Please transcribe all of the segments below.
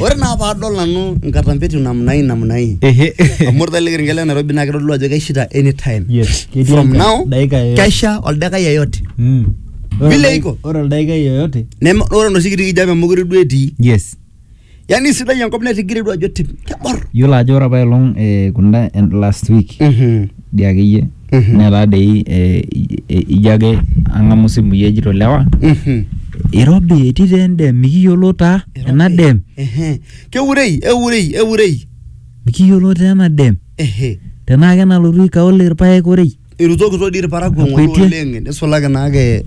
Ore naa paadol nanu nkatampetin namna hii namna hii. Ehe. Amu ore ele kerenket le Nairobi naa kitodolu ajo keshaita anytime. Yes. ketii From enkare. now Dakika yoyote. kesha oldakai yeyote. Mm. Vile Ore- iko. Ore oldaikai yoyote. Neme ore enoshi kiti kijape mekure duo etii. Yes. Yaani sidai enkop netigire duo ajo tim kebor. Yiolo ajo ore apailong eh, kunda en- last week Mhm. dii akeyie netaa dei eh, i- i- ijo ake ang'amu simui ejito lewa Mhm. irobi etii taa endem mikiyiolo taa ena dem Ehe. keurei eurei eurei mikiyiolo taa ena dem Ehe. tenaa kenalotu ikaole irpaek orei irutokito dii irparakuo ng'ole Akuetie. oleng nisulaki naake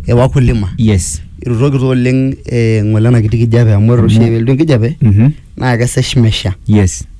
e wakulima yes irutokito oleng eh, ng'ole ena kiti kijape amu ore oshi Amu- elotu enkijape Mhm. naa kesesh mesha yes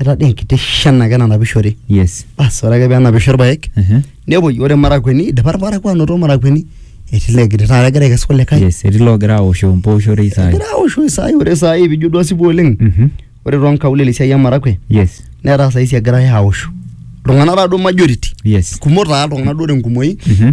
etaa dee enkiti shan ake nanapishore yes bas ore ake penapisho irpaek Ehe. nepuoi ore marakueni idipa irparakuo anoto marakueni etii legiri taata egira aikesu kulikae yes etii loogira aoshoo mpooshorei saai egira aoshoo isaai ore saai pijo duo asipu oleng Mhm. ore tonkaulele esiai emarakwe yes netaa saisi egirae aoshu iltung'anak taa duo majority yes kumok taa iltung'anak duo tenkumoi Mhm.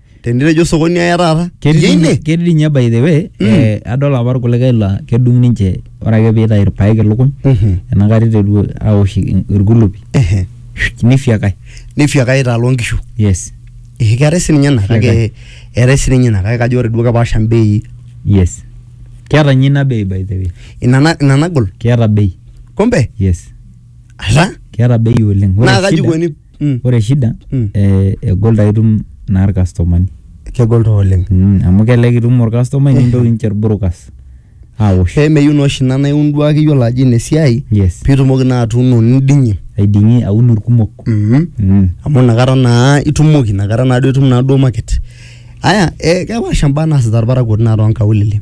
tenitejo sokoni aya taata Ketii iyie ine ketii dii ninye by the way Mm. eh, adol apa irkulikae laa kedung ninche ore ake piitayu irpaek ilukuny Mhm. enakata iteru aosh i- irkulupi Ehe. nifiakai nifyaka aitaa loo nkishu yes Eh, keetae sininye ina kake Keetae. eetae sininye ina kake kajo ore duo kepaasha mbei yes keeta ninye ina bei by the way ina na- ina nagol keeta bei kumbe yes Ala. keeta bei oleng Ore Naa kaji shida- ikoni? Mm. ore shida Mm. eh, egol taa itum naa irkastomani Kegol taa oleng. Mm, amu kelelek itum orkastomai nintoki ninche irburukas awosh Pee meyieu naa oshi ina naa iun duo ake iyiolo ajo ina esiai yes piitumoki naa atuuno niding'ie. aiding'ie aun irkumok Mhm. Mm. amu inakata naa itumoki inakata naa duo itum naa duo market aya eh, kepaasha mbaa naasita irparakuo naa toonkaulele